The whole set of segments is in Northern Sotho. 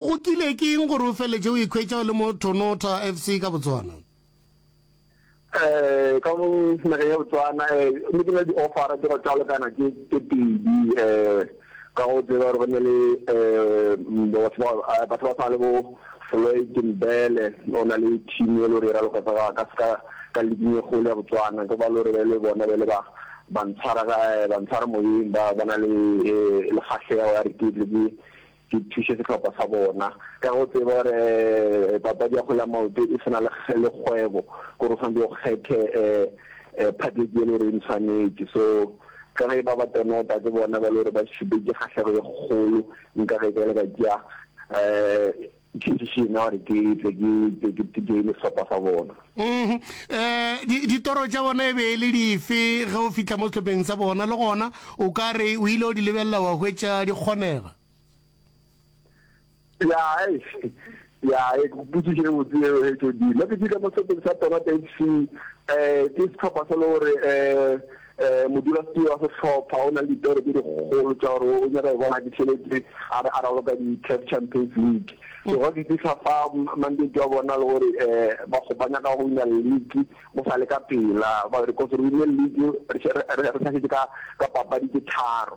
Go kile ke eng gore o feletše o ikhwetša o le mo Thonotha FC ka Botswana? Eh, ka mo nageng ya Botswana eh, ne ke na le di-offera tse go tšalokana tse tse pedi eh, ka go tseba gore go ne le eh, mm, batho ba eh, batho ba tshwana le bo Floyd Mbele o na le team e le gore e raloka ka ka ka ka leaking e kgolo ya Botswana ke ba le gore ba le bona ba le ba ba ntshwara ka eh, ba ntshwara moyeng ba ba na le eh, le kgahlego ya re ke tle ke Ke thuše sehlopha sa bona ka go tseba gore papadi ya kgwele ya maoto e se na le kgwebo, gore o tshwanetse o kgethe phatletši e le gore e ntshwanetše. So ka ge ba ba tonota ke bona ba le gore ba šupetše kgahlego e kgolo, nka ge bjale ka tšea decision ya gore ke tle ke joine sehlopha sa bona. Mm-hmm. Eh, ditoro tša bona e be e le dife ge o fitlha mo setlhopheng sa bona le gona o ka re o ile o di lebelela wa hwetša di kgonega ya ya e kuputsiše e botse eo he tšodile ke fitlha mo setlhopheng sa tona tse fc um ke setlhopha se le gore um Modulasetulo wa sehlopha o na le dipero tše dikgolo tša gore o nyaka go bona ke tšhelete a re a raloka di-CAF Champions League. So ga fetisa fa mandate wa bona le gore ba ba nyaka go wina league go sa le ka pela, ba re kose re wine league re sa šetše ka papadi tše tharo.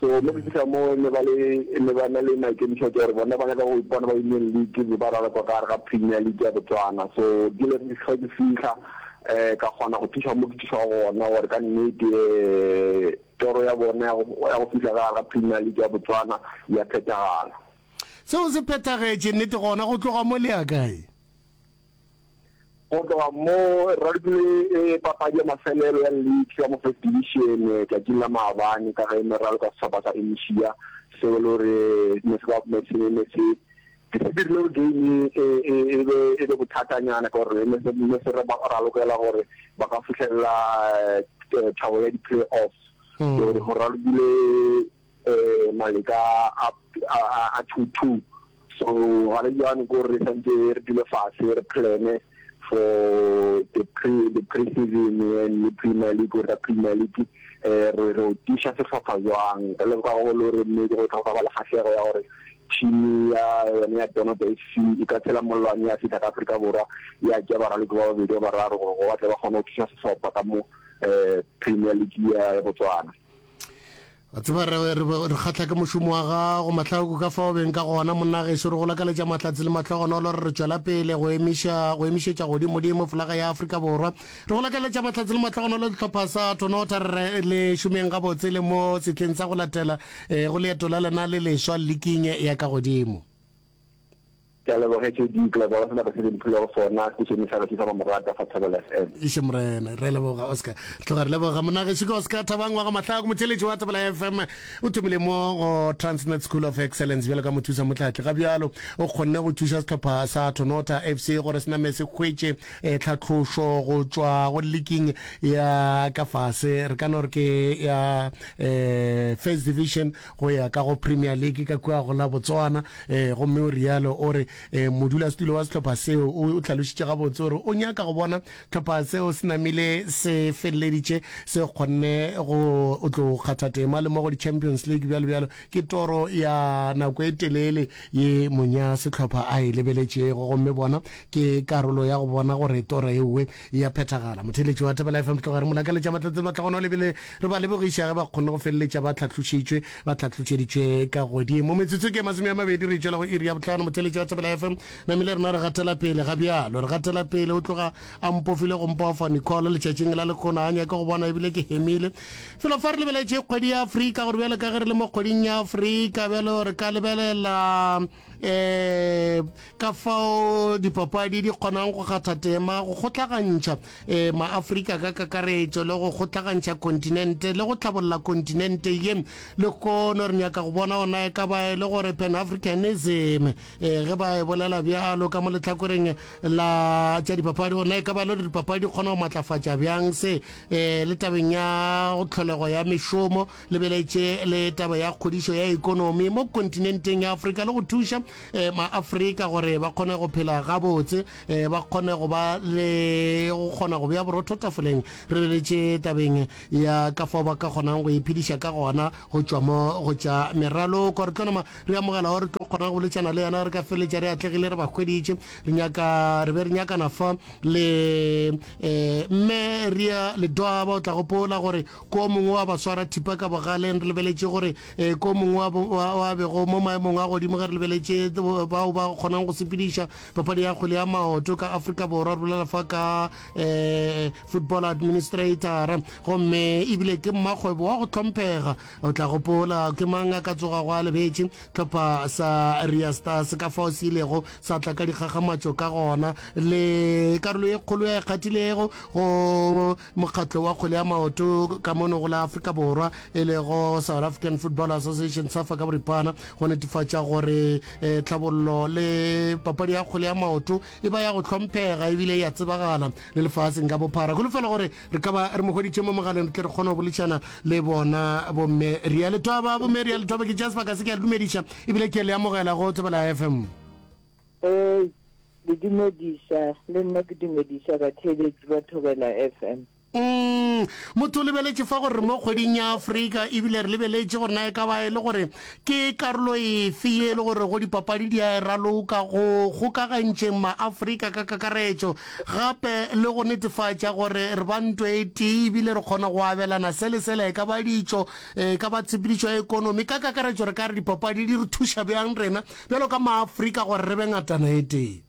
So mo go fihla mo ne ba le ne ba na le maikemišo tša gore bona ba nyaka go ipona ba Union League be ba rala kwa ka gare ga Premier League ya Botswana so ke le ke hlwa ke fihla um ka kgona go thuša mo ke thušago gona gore ka nnete um toro ya bona ya go fihla ka gare ga Premier League ya Botswana ya phethagala seo se phethagetše nnete gona go tloga mo le ya kae Go tloga moo, rugby e papadi ya mafelelo ya league ya mo First Division tšatšing la maabane ka ge e ne ralokwa sehlopha sa Enisia seo e le gore ne se ba se ne ne se ke se dirile gore game e e e be e be bothatanyana ka gore ne se ne se re ba ralokela gore ba ka fihlelela thabo ya di-playoffs so re go ralokile um maleka a a a two two so ga re jane ko re santse re dule fase re plan for the pre the pre season and le premier league or the premier league um re re tiša sehlopha jwang re le ka go le gore mme go tla go ba le kgahlego ya gore team ya yone ya Donoto FC e ka tshela mollwane ya fihla ka Afrika Borwa ya tša baraloko ba babedi ba bararo gore go batle ba kgone go thuša sehlopha ka mo um Premier League ya Botswana. a tseba re re re kgatla ke mošomo wa gago mahlako ka fao beng ka gona monna geso re go lakaletša mahlatse le mahlogonolo re re tšwela pele go emiša go emišetša godimodimo folaga ya afrika borwa re go lakaletša mahlatse le mahlogonolo sehlopha sa tonota re re le šomeng gabotse le mo setleng sa go latela um go leeto la lena le leswa liking ya ka godimo Ke a leboga HOD Global go sebaka se le mphilego sona, station e sa re thusa mamorata fa Thobela FM. Eish Morena, re a leboga Oscar. Tloga re leboga Monagešo ke Oscar Thabang wa ga Mahlaku, motšheletši wa Thobela FM. O thomile mo go Transnet School of Excellence bjalo ka mothusa motlatli. Ga bjalo o kgonne go thuša sehlopha sa Thonotha FC gore se name se hwetše tlhatlošo go tšwa go liking ya ka fase, re ka no re ke ya First Division, go ya ka go Premier League ka kua go la Botswana, ee, gomme o realo. O re, ee, modulasetulo wa sehlopha seo o hlalošitše gabotse gore o nyaka go bona sehlopha seo se namile se feleleditše se kgonne go tlo kgatha tema le mo go di-Champions League, bjalo bjalo. Ke toro ya nako e telele ye mony'a sehlopha a e lebeletšego, gomme bona ke karolo ya go bona gore toro ewe E a phethagala. Motheeletši wa Thapelo FM Tloga re mo lakaletša matlatselo a tla gona o lebile re ba lebogiša ge ba kgonne go feleletša ba tlhatlošitšwe, ba tlhatlošeditšwe ka godimo. Metsotso ke ye masome a mabedi re e tšwela go iri ya bohlano. Motheeletši wa Thapelo FM namile rena re gatela pele ga bjalo. Re gatela pele o tloga a mpofile go mpofa Nicole letšatšing la lekgono a nyake go bona ebile ke hemile. Felo fa re lebeletše kgwedi ya Afrika gore bjalo ka ge re le mo kgweding ya Afrika bjalo re ka lebelela um ka fao dipapadi di kgonang go kgatha tema go kgotlagantšha um maafrika ka kakaretšo le go kgotlagantšha kontinente le go tlhabolola kontinente ye le kono re nyaka go bona ona e ka ba e le gore pan africanism um ge ba e bolela bjalo ka mo letlhakoreng la tša dipapadi ona e ka ba e le gore dipapadi di kgona go matlafatša bjang se um le tabeng ya go tlholego ya mešomo lebeletše le taba ya kgodišo ya ekonomi mo kontinenteng ya afrika le go thuša eh, maafrika gore ba kgone go phela gabotse eh, ba kgone go ba le go kgona go bea borotho tafoleng re lebeletše tabeng ya ka fao ba ka kgonang go iphediša ka gona go tšwa mo go tša meraloko re tlo nama re amogela gore tlo kgona go boletšana le yena re ka feletša re atlegile re ba hweditše re nyaka re be re nyakana fa le um mme rea ledoaba o tla gopola gore Ko mongwe wa baswara thipa ka bogaleng re lebeletše gore e ko mongwe wa wa bego mo maemong a godimo ge re lebeletše bao ba kgonang go sepediša papadi ya kgwele ya maoto ka Afrika Borwa re bolela fa ka e football administrator gomme ebile ke mmakgwebo wa go tlhomphega o tla gopola ke mang a ka tsoga go a lebetše tlhopha sa Ria Stars ka fao se ilego sa tla ka dikgakgamatšo ka gona le karolo e kgolo ya e kgathilego go Mokgatlo wa kgwele ya maoto ka mono go la Afrika Borwa e lego South African Football Association, Safa ka boripana, go netefatša gore eh, tlhabollo le papadi ya kgwele ya maoto e ba ya go hlomphega ebile ya tsebagala le lefaseng ka bophara. Kholofela gore re ka ba re mo hweditše mo mogaleng re tle re kgone go boledišana le bona bomme Ria Letoba. Bomme Ria Letoba ke tšea sebaka se ke a le dumediša ebile ke le amogela go Tsebela FM. Ee, le dumediša, le nna ke dumediša batheeletši ba Thobela FM. Umm, motho o lebeletše fa gore re mo kgweding ya Afrika ebile re lebeletše gore na e ka ba e le gore ke karolo efe ye e le gore go dipapadi di a e raloka go kgokagantšeng ma-Afrika ka kakaretšo gape le go netefatša gore re ba nto e tee ebile re kgona go abelana se le sela e ka ba ditšo e ka ba tshepedišo ya ekonomi ka kakaretšo re ka re dipapadi di re thuša bjang rena Bjalo ka Maafrika gore re be ngatana e tee.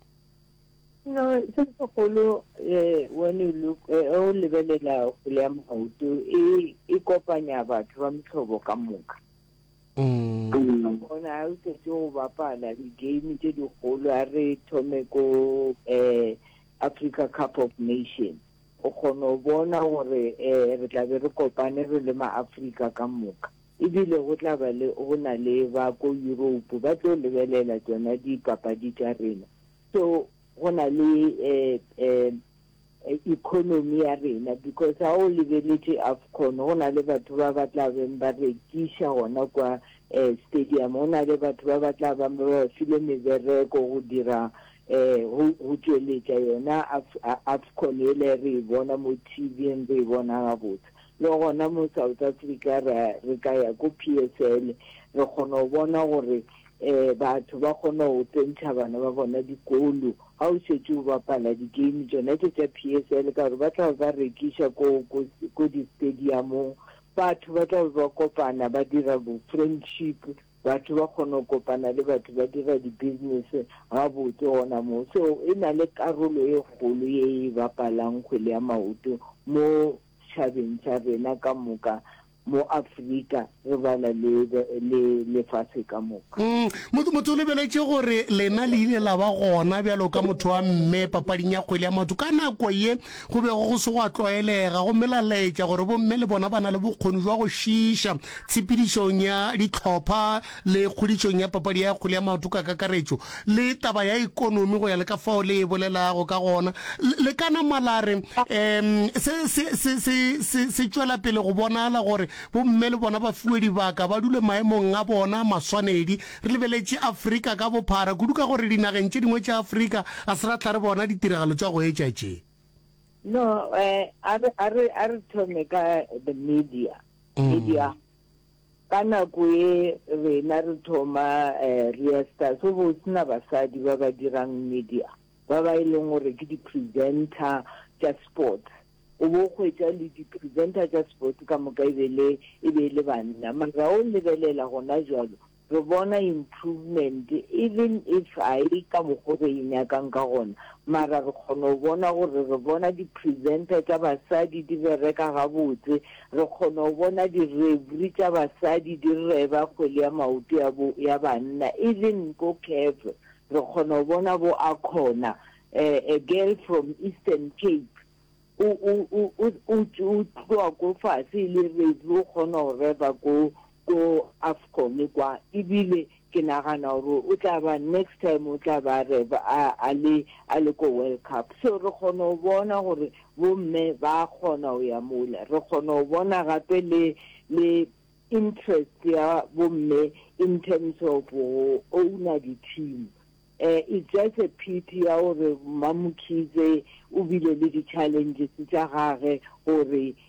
You know, se segolo eh, when you look, eh, ge o lebelela kgole ya maoto, e, e kopanya batho ba mehlobo ka moka. Mm. Bona ha o setse go bapala di-game tse dikgolo, a re thome ko eh, Africa Cup of Nation. O kgona go bona gore eh, re tla be re kopane re le ma-Afrika ka moka. e bile go tla ba le go na le ba ko Yuropo ba tlo lebelela tšona dipapadi tša rena, so go na le um economy ya rena because ga o lebeletše Afcon go na le batho ba ba tla beng ba rekiša gona kwa um stadium, go na le batho ba ba tla bang ba ba file mebereko go dira um go tšweletša yona Afcon yela re e bona mo T_V-ing re e bona gabotse. Le gona mo South Africa ra re ka ya ko PSL re kgona go bona gore eh batho ba kgona go tsentšha bana ba bona dikolo ga o šetše o bapala di-game tšona tše tša PSL ka gore ba tla ba rekiša ko ko ko di-stadiumong batho ba tla ba kopana ba dira bo-friendship batho ba kgona go kopana le batho ba dira di-business gabotse gona moo so e na le karolo e kgolo e e bapalang kgwele ya maoto mo setšhabeng sa rena ka moka, mo Afrika, re bala le, le lefase ka moka. Motho, motho o lebeletše gore lena le ile la ba gona bjalo ka motho wa mme papading ya kgwele ya maoto. Ka nako ye, go bego go se gwa tlwaelega, gomme la laetša gore bomme le bona ba na le bokgoni bja go šiiša tshepedišong ya dihlopha le kgodišong ya papadi ya kgwele ya maoto ka kakaretšo, le taba ya ekonomi go ya le ka fao le e bolelago ka gona, le ka nama la re, um se, se, se, se, se, se tšwela pele go bonala gore bomme le bona ba fiwe dibaka, ba dule maemong a bona a maswanedi. Re lebeletše Afrika ka bophara, kudu ka gore dinageng tše dingwe tša Afrika ga se ra tla re bona ditiragalo tša go etša tše. No, um a re, a re, a re thome ka the media, media. Ka nako e rena re thoma Reastar go bo se na basadi ba ba dirang media ba ba e leng gore ke di-presenter tša sports. O bo o hwetša le di-presenter tša sports ka moka e be le e be e le banna. Mara ga o lebelela gona bjalo re bona improvement even if ga e ka mokgo re e nyakang ka gona mara re kgona go bona gore re bona di-presenter tša basadi di bereka gabotse. Re kgona go bona direbri tša basadi di reba kgwele ya maoto ya bo, ya banna, even ko Kef. Re kgona go bona bo Akhona, a, a girl from Eastern Cape, o, o, o, o, o, o tloga ko fase e le rebri, o kgona go reba ko, ko Afcon kwa ebile ke nagana gore o tla ba next time o tla ba re a a le a le ko World Cup so re kgona go bona gore bo mme ba kgona go ya mola re kgona go bona gape le le interest ya bo mme in terms of go owner di team eh it's just a pity ya gore Mmamokhize o bile le di challenges tsa gage gore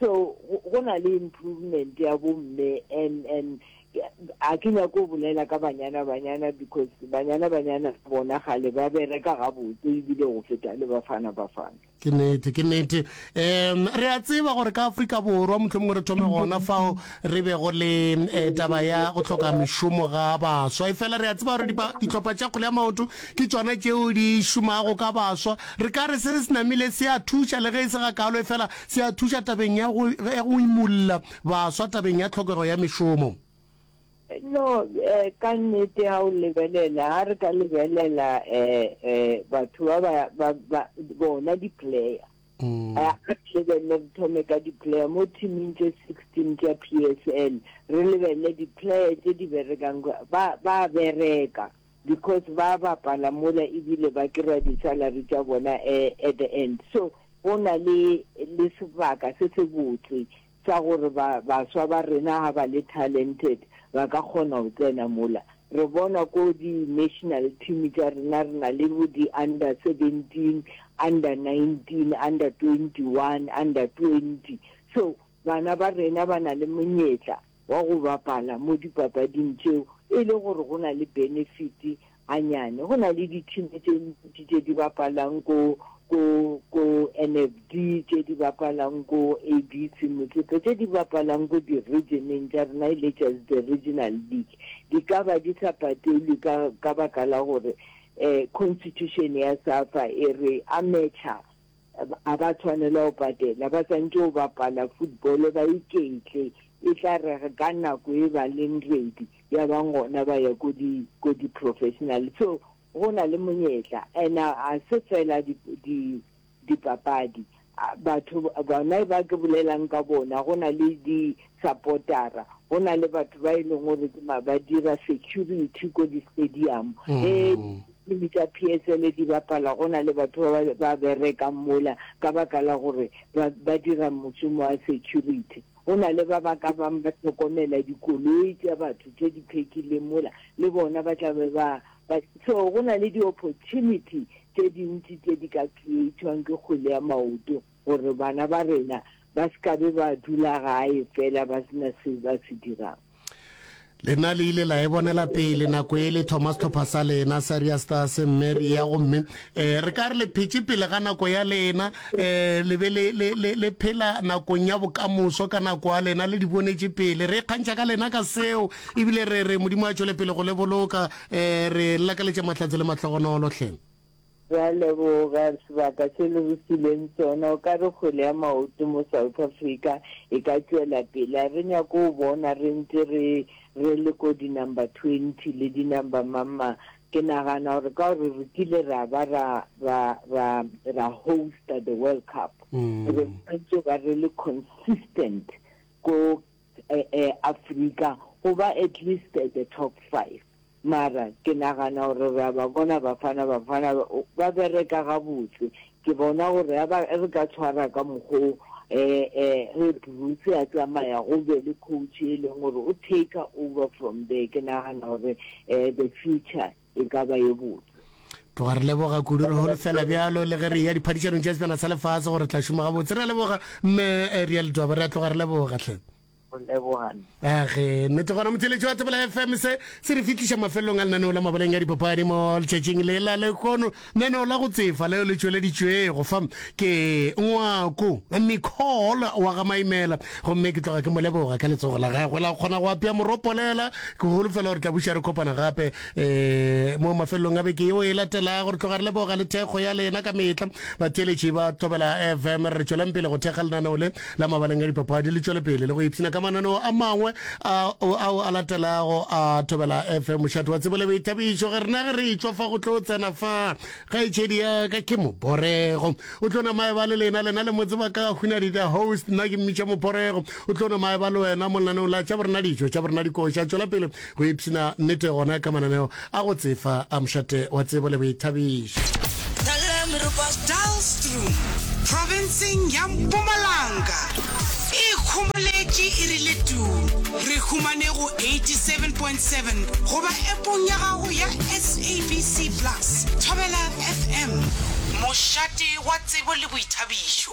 So go na le improvement ya bo mme and and a ke nyako go bolela ka banyana banyana because banyana banyana bona gale ba bereka gabotse ebile go feta le bafana bafana ke nete ke nete um re a tseba gore ka afrika borwa motlho mongwe re thome gona fao re be go le eh, taba ya go tlhoka mešomo ga baswa e fela re a tseba gore ditlhopha tša kgole ya maoto ke tsona tšeo di šomago ka baswa re ka re se re se namile se a thuša le ge e se ga kalo e fela Se a thuša tabeng ya go, ya go imolla baswa tabeng ya tlhokego ya mešomo. No, eh, ka nnete ha o lebelela, ha re ka lebelela eh, eh, batho ba ba, ba, ba bona di-player. Mm. Eh, a lebelele re thome ka di-player mo teaming tse sixteen tša PSL, re lebelele di-player tse di berekang, ba, ba bereka. because ba bapala mola ebile ba kry-a di salary tša bona at the end so go na le le sebaka se se botse sa gore ba baswa ba rena ha ba le talented ba ka kgona go tsena mola re bona ko di national team tša rena re na le bo di under 17 under 19 under 21 under 20 so Bana ba rena ba na le monyetla wa go bapala mo dipapading tšeo e le gore go na le benefiti ganyane. Go na le dithimi tše ntši tše di bapalang ko, ko, ko NFD, tše di bapalang ko ABC Motsepe, tše di bapalang ko di-region-eng tša rena e le tša the regional league. Di ka ba di sa patelwe ka, ka baka la gore um constitution ya Safa e re amateur a ba tshwanela go patela ba santše go bapala football ba iketle e tla re ka nako e ba leng ready ya bang gona ba ya ko di ko di professional so go na le monyetla and a se fela di di dipapadi batho bona ba ke bolelang ka bona go na le di supportera go na le batho ba e leng gore ke ma ba dira security ko di-stadium e diteam tsa p s l di bapala go na le batho ba ba- ba berekang mola ka baka la gore ba ba dira mošomo wa security go na le ba ba ka bang ba tlhokomela dikoloi tša batho tše di phekileng mola le bona ba tla be ba ba so go na le di-opportunity tše dintši tše di ka creatwang ke kgwele ya maoto gore bana ba rena ba se ka be ba dula gae fela ba se na seo ba se dirang. Lena le ile la e bonela pele nako e le thoma setlhopha sa lena sa Riasta se Mary ya gomme um re ka re le phetše pele ga nako ya lena um le be le phela nakong ya bokamoso ka nako ya lena le di bonetše pele re kgantšha ka lena ka seo ebile re re modimo a tšwele pele go le boloka um re lakaletša mahlatse le mahlogonolo hleng Re a leboga sebaka se le re fileng sona. O ka re kgwele ya maoto mo South Africa e ka tšwela pele? A re nyake go bona re ntse re re le ko di number twenty le di number mang mang. Ke nagana gore ka gore re kile ra ba ra ra ra ra hosta the World Cup, re tshwanetse ba re le consistent ko Africa go ba at least at the top five mara ke nagana gore re a ba bona Bafana Bafana ba bereka gabotse ke bona gore ya ba re ka tshwara ka mokgo re Bruce a tsamaya go be le coach e leng gore o take over from there ke nagana gore the future e ka ba ye botse. tloga re leboga kudu re holofela bjalo le ge re ya diphadišanong tša sebjana sa lefase gore tla šoma gabotse re a leboga mme eh, rea letwaba re a tloga re leboga tlhe age nnete gona motheletši wa tsebela fm se se re fihliša mafelelong a lenaneo la mabaleng ya dipapadi mo letšatšing lela lekono Neno la go tsefa leo le tšweleditšwego fa ke ngwako Nicole wa ga Maimela gomme ke tloga ke mo leboga ka letsogo la gagwe la go kgona go apea moropolela. Ke holofela gore tla buša re kopana gape um mo mafelelong a beke yeo e latelago. Re tloga re leboga le thekgo ya lena ka mehla, batheeletši ba Thobela FM. Re re tšweleng pele go thekga lenaneo le la mabaleng a dipapadi le tšwele pele le go ipshina ka mananeo a mangwe ao a latelago a thobela fm mošate wa tsebo le boithabišo ge rena ge re etswa fa go tlo tsena fa kgaetšedi ya ka ke moborego o tlo namae ba le lena lena le motse ba ka hunadi the host nna ke mmitša moborego o tlo namae ba le wena mo lenaneong la tša borena dijo tša borena dikoša tšwela pele Go ipshina nnete gona ka mananeo a go tsefa a mošate wa tsebo le boithabišo. Tlhagelela meropa Daalstroom profenseng ya Mpumalanga e ikhomoletše e rile tuu. Re humane go 87.7 goba appong ya gago ya SABC Plus. Thobela FM, mošate wa tsebo le boithabišo.